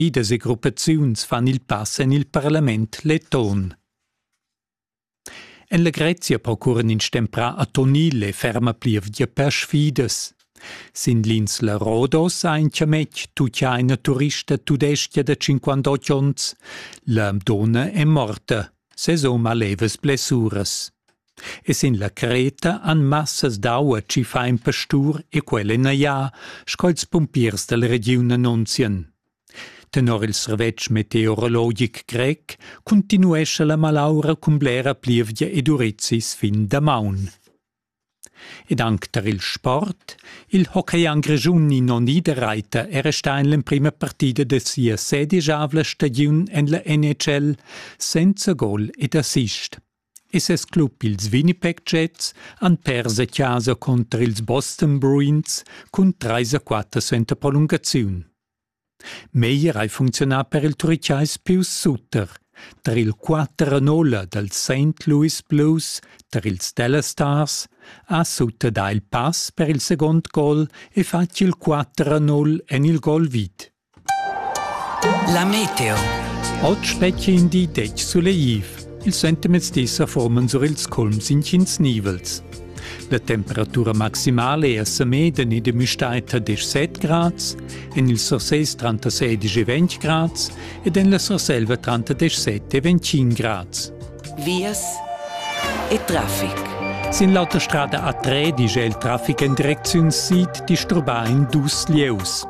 Idas e gruppaziuns fan il pass en il parlament leton. En la Grezia procuran ins stemprà a Tonil e ferma plievgia per sfidas. Sin l'insla Rodos ha in chametg tuchaina turista tudestia da 58 onns. La donna è morta. Sezon ha levas blessuras. E sin la creta han massas d'aua tschiffà in pastur e quella ina ia, sco ils pumpiers dalla regiun annunzian. Tenor il servetsch meteorologic grec continuescha la malaura cun blera plievgia ed urizis fin damaun. Ed anc tar il sport, il hockeyang grischun Nino Niederreiter è restà en l'emprima partida da sia sedigiavla stagiun en la NHL senza gol ed assist. e ses club ils Winnipeg Jets han pers a chasa cunter ils Boston Bruins cun trais a quatter suenter prolungaziun. Meyer hai funcziunà per il Turichais Pius Sutter tar il 4 a 0 dals St. Louis Blues tar ils Dallas Stars ha Sutter dà il pass per il segund gol e fatg il 4 a 0 en il gol vid. La meteo. Oggi fetg in di detg suleiv. Il sentimezdi sa forman sur ils culms inschins nivels. La temperatura maximale è a Semeden e de Müstaita 17 grads, en il Surses 36 e 20 grads ed en la Surselva 37 e 25 grads. Vias e traffic. Sin l'autostrada A3 digl il traffic en direcziun sid disturbà in dus lieus.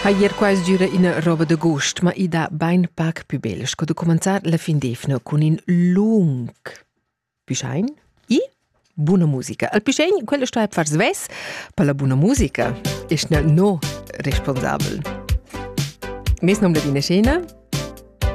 Ha ier quais düra ina roba da gust, ma i da bain pac pü bel sco da cumanzar la fin d'evna cun in lung pischein. I buna musica. Al pischein, quella sto a far svess per la buna musica. Ist no responsabel. Mes nom da dina scena